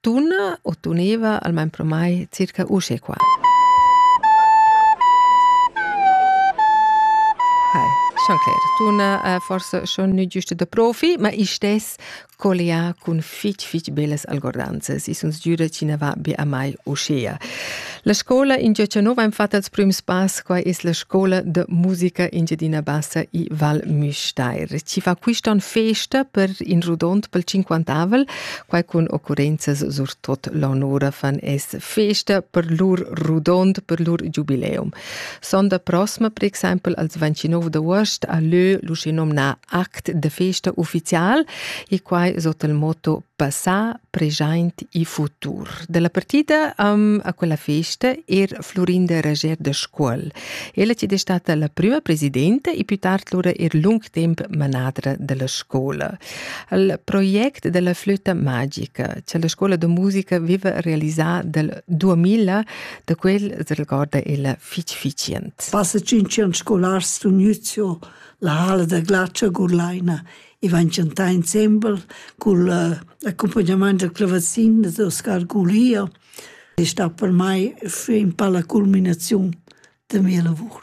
Tunna u tuneva almain pro mai circa usche qua. Hai, schon cler. Tunna è forse schon nu giusta da profi, ma istess collià cun fich fich bellas algordanzas. I sun sgüda chi na va be a mai uschea. La scola in gia nova im fatta als prüms pass, quai es la scola da musica Engiadina Bassa i Val Müstair. Chi fa quist on festa per in rodond pel cinquantavel quai cun occurrenzas surtot l'onura fan es festa per lur rudond, per lur giubileum. Sonda prossima, per exempel, als 29 d'aost a lö l'usinomna act de festa ufficial e quai sot il motto Passà, Present e Futur. Dalla partida um, a quella festa er Florinda Rager de Scuol. Ella ci è stata la prima presidente e più tard lura er lung temp manadra della scuola. al project della flöta magica, che la scola de musica viva realisà del 2000, da quel se recorda ella fitch ficient. Passa cinque anni scolars d'un Nüzio, la hala da glacia Gurlaina, e van chantar insieme con l'accompagnamento del clavazin di Oscar Gulia. È stata per me in palla culminazione della mia lavoro.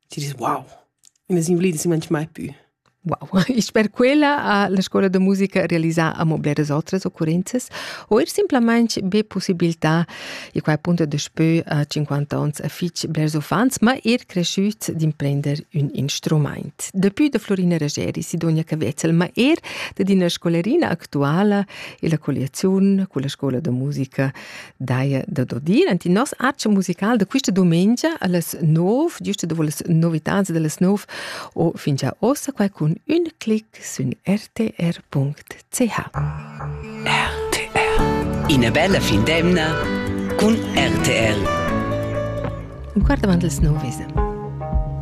ti dis wow, ina invalida si manch mai più. Wow, ich per quella ha la scola de musica realizà amo bleras otras occurrenzas o er simplamente be possibilità e qua appunto daspö a 50 ans a fich blers uffants, ma er cresciuts d'imprender un instrument. Dapü da Florina Rageri si Donia Cavetzel, ma er da d'ina scolerina actuala e la colliaziun con la scola de musica daia da dodir. Enti nos accia musical da quista domengia alles nov, giusto dovo las novitans delles nov o fin già ossa qua cun un clic sün rtr.ch. RTR Ina bella fin d'emna cun RTR. Un quart avant les nov esa.